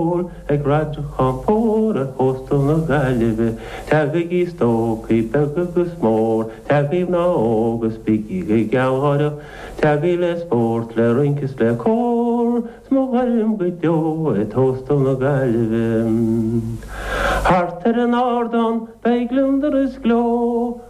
Mór ag Radharc Conchúir ar Thóstal na Gaillimhe, Teagaigí stócaigh beag agus mór, Teagaí mná óg is bígí go gealgháireach, Teagaí le spórt, le rince is le cór, 'S mo ghairm go deo é Tóstal na Gaillimhe. Thart ar an ardán beidh gliondar is gleo,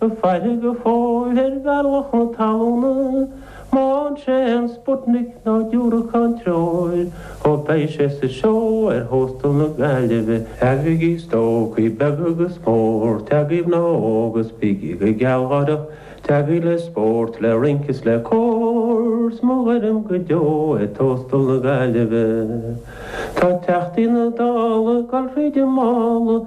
a faillí go fóill ar bhealach na talúna, má fhan sé an Sputnik nó diúracán treoir, ó beidh sé sa seó ar thóstal na Gaillimhe. Teagaigí stócaigh beag agus mór, teagaí mná óg is bígí go gealgháireach, teagaí le spórt, le rince is le cór, 's mo ghairm go deo é Tóstal na Gaillimhe. Tá teachtaí na Dála ag dul thríd an mála,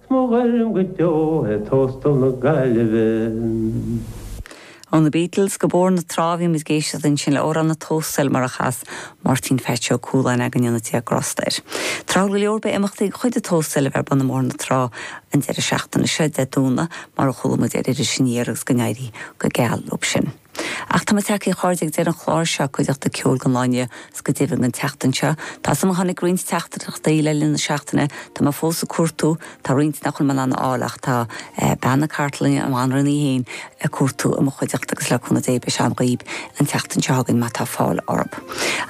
'S mo ghairm go deo é tóstal na Gaillimhe. Ó na Beatles go Bóthar na Trá bhí muid ag éisteacht ansin le hamhrán an Tóstail mar a chas Máirtín Pheaits Ó Cualáin go ndéana Dia grásta air. Tráthúil go leor beidh imeachtaí de chuid an Tóstail a bheith ar bun i mBóthar na Trá an deireadh seachtaine seo, Dé Domhnaigh, mar a chuala muid ar Iris Aniar agus go n-éirí go geal leo sin. Ach tá muid tagthaí a chairde ag deireadh an chláir seo, cuideachta ceoil don lá inniu, agus go deimhin an tseachtain seo, tá a fhios agam tháinig roinnt teachtaireachtaí le linn na seachtaine, tá mé fós ag cuartú, tá roinnt nach bhfuil mé in ann a fháil ach tá bean na cartlainne, an Bhanríon í féin, ag cuartú i mo chuideachta agus le cúnamh Dé beidh siad agam dhaoibh an tseachtain seo chugainn má tá fáil orthu.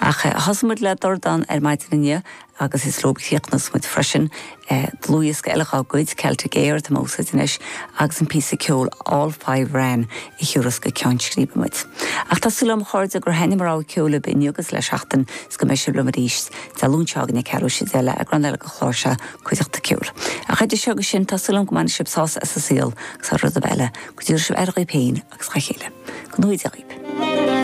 Ach thosaigh muid le Dordán ar maidin inniu, agus is leo a chríochnós muid freisin dlúthdhiosca eile dhá gcuid, Celtic Aire atá mé a úsáid anois, agus an píosa ceoil All Five Ran a thiúras go ceann scríbe muid. Ach tá súil agam, a chairde, gur thaitnigh mo rogha ceoil libh inniu agus le seachtain, 's go mbeidh sibh liom arís Dé Luain seo chugainn, ceathrú tar éis a deich le heagrán eile den chlár seo Cuideachta Ceoil. Ach idir seo agus sin, tá súil agam go mbainfidh sibh sásamh as an saol, agus thar rud ar bith eile, go dtabharfaidh sibh aire dhaoibh féin agus dá chéile. Go ngnóthaí Dia daoibh.